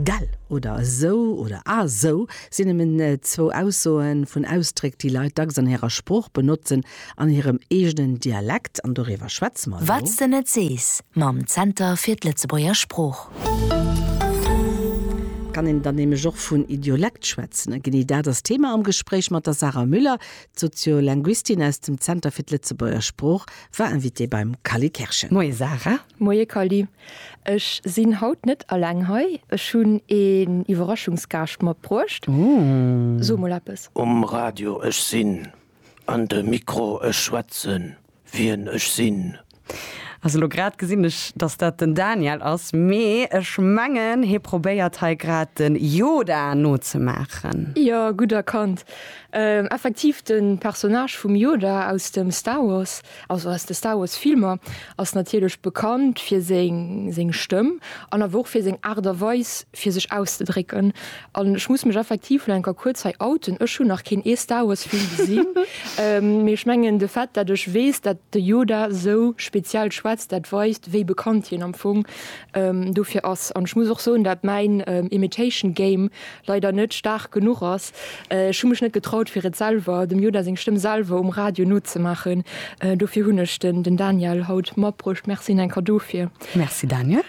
Gell oder esou oder a sou sinn nëmmen zwou Aussoen vun Ausdréck, déi Leit dacks an hirer Sprooch benotzen, an hirem eegenen Dialekt, an doriwwer schwätze mer elo. Wat's de net sees mam Zenter fir d'Lëtzebuerger Sprooch. Kann een dann nämlech och vun Idiolekt schwätzen, a genee dat ass d'Thema am Gespréich mat der Sarah Müller. D'Soziolinguistin aus dem Zenter fir d'Lëtzebuerger Sprooch war Invitée beim Cally Kerschen. Moie Sarah. Moie Cally. Ech sinn haut net alleng hei, ech hunn een Iwwerraschungsgaascht matbruecht. So mol eppes. Um Radio, Ech sinn. An de Mikro, Ech schwätzen, wien ech sinn. Also elo grad gesinn ech, dass dat den Daniel ass, mee ech mengen, hie probéiert hei grad de Yoda nozemaachen. Jo, gutt erkannt. Effektiv de Personnage vum Yoda aus dem Star Wars. Also aus de Star Wars Filmer ass natierlech bekannt fir seng seng Stëmm an awer och fir seng Aart a Weis fir sech auszedrécken. An ech muss mech effektiv lo enker kuerz hei outen, ech hunn nach keen ee Star Wars Film gesinn, mee ech mengen de Fait dat ech weess dat de Yoda sou speziell schwätzt, dat weist wéi bekannt hien am Fong dofir ass. An ech muss och soen dat mäin Imitation Game leider net staark genuch ass. Ech hu mech net getraut fir et selwer, dem Yoda seng Stëmm selwer um Radio nozemaachen, dofir hunn ech den den Daniel haut matbruecht. Merci Nenka dofir. Merci Daniel.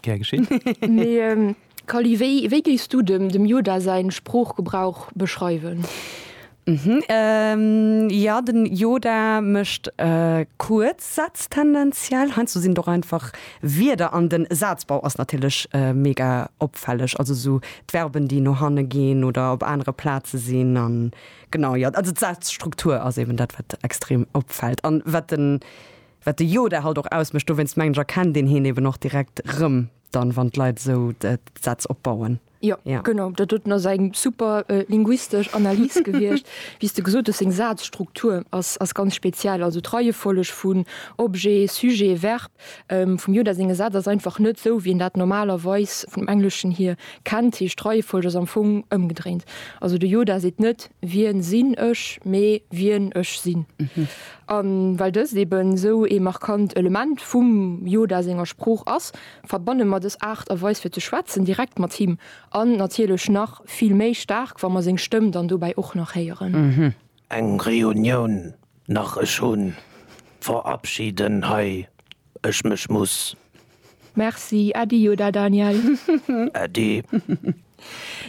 Gär geschéen. Mee Kally, wéi wéi géifs du dem dem Yoda säin Sproochgebrauch beschreiwen? Mhm, jo, den Yoda mécht kuerz Sätz tendenziell. Heiansdo sinn et och einfach Wierder an den Sazbau ass natierlech mega opfälleg, also esou d'Verben, déi no hanne ginn oder op anere Plaze sinn an genau, jo, also d'Sazstruktur ass eeben dat, wat extrem opfält an wat den, wat de Yoda halt och ausmécht. Dowéinst mengen ech, erkennt een hien eeben och direkt erëm dann, wann d'Leit esou d'Sätz opbauen. Jo, ja. genau, dat huet ass eng super äh, linguistesch Analys gewiescht. Wéi du gesot hues, seng Sazstruktur ass, ass ganz speziell. Also d'Reiefolleg vun Objet, Sujet, Verb ähm, vum Yoda senge Saz ass einfach net sou, wéi en dat normalerweis vum Engleschen hier kennt. Heescht d'Reiefolleg ass am Fong ëmgedréint. Also de Yoda seet net Wien sinn ech, mee Wien ech sinn. Mhm. An well dëst eben sou ee markant Element vum Yoda senger Sprooch ass, verbanne mer dës Aart a Weis fir ze schwätzen direkt mat him an natierlech nach vill méi staark, wa mer seng Stëmm dann dobäi och nach héieren. Eng Reunioun nach, ech hunn verabschieden hei ech mech muss. Merci, Äddi oder Daniel? Äddi.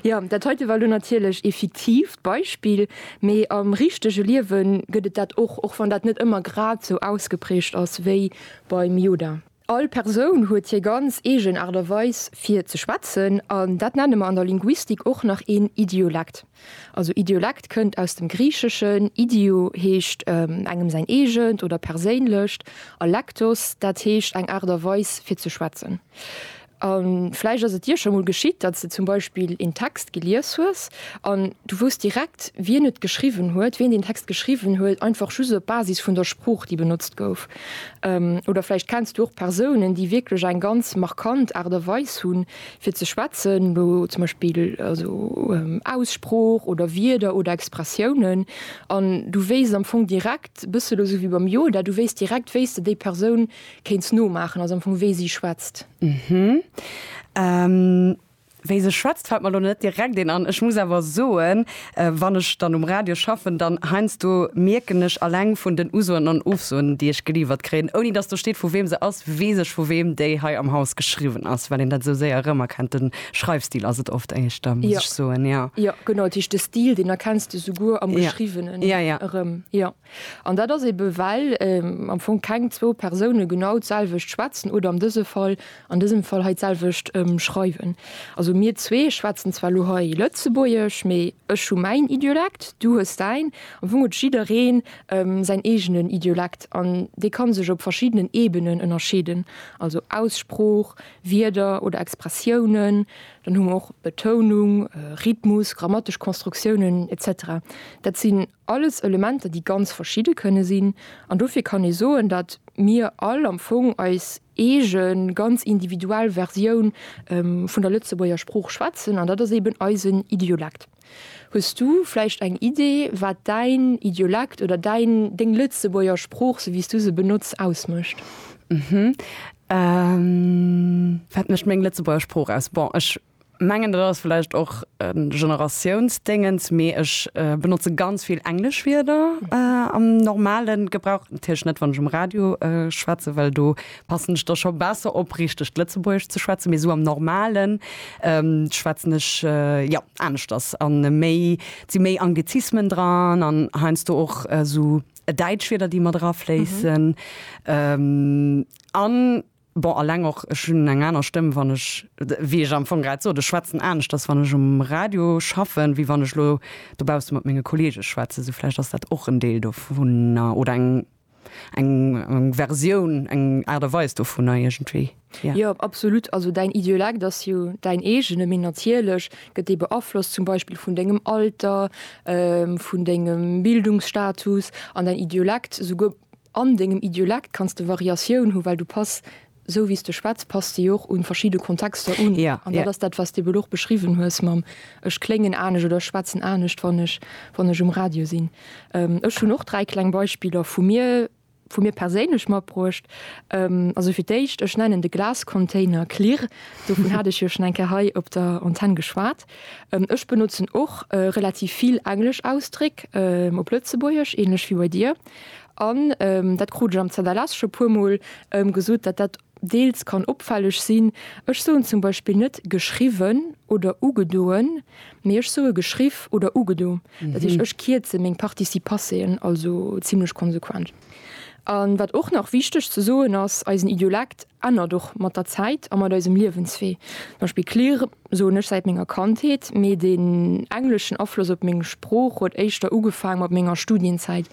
Jo, dat heite war elo natierlech ee fiktiivt Beispill, mee am richtege Liewe gëtt et dat och, och wann dat net ëmmer grad sou ausgeprägt ass wéi beim Yoda. All Persoun huet hir ganz eegen Aart a Weis fir ze schwätzen an dat nenne mer an der Linguistik och nach een Idiolekt. Also Idiolekt kënnt aus dem Griicheschen, idio heescht engem säin eegent oder perséinlecht a lektos, dat heescht eng Aart a Weis fir ze schwätzen. A vläicht ass et dir scho mol geschitt, datt s de zum Beispill een Text gelies hues an du wousst direkt, wien et geschriwwen huet, wien deen Text geschriwwen huet, einfach just op Basis vun der Sprooch, déi benotzt gouf. Oder vläicht kenns du och Persounen, déi wierklech eng ganz markant Aart a Weis hu fir ze schwätzen, elo zum Beispill also Aussprooch oder Wierder oder Expressiounen, an du wéisst am Fong direkt, e bëssel elo esou wéi beim Yoda, du wéisst direkt, wéi s de déi Persoun Kéints nomaachen, also am Fong wéi si schwätzt. Hm. Wéi se schwätzt fällt mer elo net direkt een an. Ech muss awer soen, wann ech dann um Radio schaffen, dann heiansdo mierken ech alleng vun den Usoen an Ofsoen, déi ech geliiwert kréien, ouni dass do steet vu weem se ass, weess ech vu weem déi hei am Haus geschriwwen ass, well een dat esou séier erëmerkennt. De Schreifstil ass et oft éischter, muss ech soen, jo. Jo, genau, dat heescht de Stil, deen erkenns de souguer am Geschriwwenen erëm, jo. An dat ass ebe well am Fong keng zwou Persoune genau d'selwecht schwätzen oder an dëse Fall, an dësem Fall hei d'selwecht schreiwen. Also mir zwee schwätzen zwar elo hei Lëtzebuergesch, mee ech hu mäin Idiolekt, du hues däin. Am Fong huet jidderee säin eegenen Idiolekt an dee ka sech op verschiddenen Ebenen ënnerscheeden, also Aussprooch, Wierder oder Expressiounen. Dann hu mer och Betounung, Rhythmus, grammatesch Konstruktiounen, etc. Dat sinn Alles Elementer, déi ganz verschidde kënne sinn. An dofir kann ee soen, datt mir all am Fong eis eege ganz individuell Versioun vun der Lëtzebuerger Sprooch schwätzen, an dat ass eben eisen Idiolekt. Hues du vläicht eng Idee, wat däin Idiolekt oder däin, deng Lëtzebuerger Sprooch, sou wéi s du se benotz, ausmécht? Wat mécht meng Lëtzebuerger Sprooch aus? Bon, ech mengen dat ass vläicht och e Generatiounsdéngens, mee ech benotze ganz vill englesch Wierder am normale Gebrauch, natierlech net wann ech um Radio schwätze, well do passen ech da scho besser op richtegt Lëtzebuergesch ze schwätzen, mee esou am normalen schwätzen ech jo aneschters an méi, et si méi Anglizismen dran an heiansdo och esou däitsch Wierder déi mat erafléissen an. Bon, alleng och, ech hunn eng aner Stëmm, wann ech, wéi ech am Fong grad sot, ech schwätzen aneschters, wann ech um Radio schaffen, wéi wann ech elo dobausse mat menge Kolleege schwätzen. Sou vläicht ass dat och en Deel dovunner oder eng, eng Versioun, eng Aart a Weis dovunner iergendwéi, jo. Jo, absolut. Also däin Idiolekt ass jo däin eegene, mee natierlech gëtt dee beaflosst zum Beispill vun dengem Alter, vun dengem Bildungsstatus an däin Idiolekt souguer An dengem Idiolekt kanns de Variatioun hu well du pass, sou wéi s de schwätz, pass de jo och un verschidde Kontexter un. An dat ass dat wat s de ebe lo och beschriwwen hues mam ech kléngen anescht oder ech schwätzen anescht wann ech wann ech um Radio sinn. Ech hunn och dräi kleng Beispiller vu mir vu mir perséinlech matbruecht. Also fir d'éischt, ech nennen de Glascontainer Klirr, dovun hat ech jo schon eng Kéier hei op der Antenn geschwat. Ech benotzen och relativ vill englesch Ausdréck op Lëtzebuergesch, ähnlech wéi bei dir. An dat krut ech am ZLS scho puermol gesot, datt dat deels kann opfälleg sinn. Ech soen zum Beispill net geschriwwen oder ugedoen, mee ech soe geschriff oder ugedo. Dat heescht, ech kierze meng Participasseen also zimmlech konsequent. An wat och nach wichteg ze soen ass, eisen Idiolekt ännert och mat der Zäit a mat eisem Liewenswee. Zum Beispill klirr soen ech säit menger Kandheet, mee den engleschen Afloss op meng Sprooch huet éischter ugefaang mat menger Studienzäit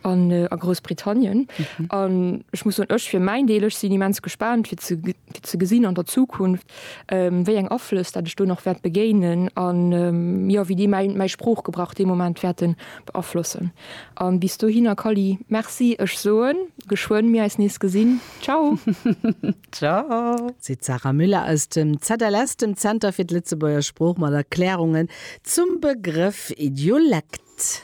an a Groussbritannien. An ech muss soen, ech fir mäin Deel, ech sinn immens gespaant fir ze fir ze gesinn an der Zukunft wéi eng Aflëss dat ech do nach wäert begéinen an jo wéi déi mäin mäi Sproochgebrauch dee Moment wäerten beaflossen. An bis dohinner Kally, merci, ech soen geschwënn mir eis nees gesinn. Ciao. Ciao. Seet d'Sarah Müller aus dem ZLS, dem Zenter fir d'Lëtzebuerger Sprooch, mat Erklärungen zum Begrëff Idiolekt.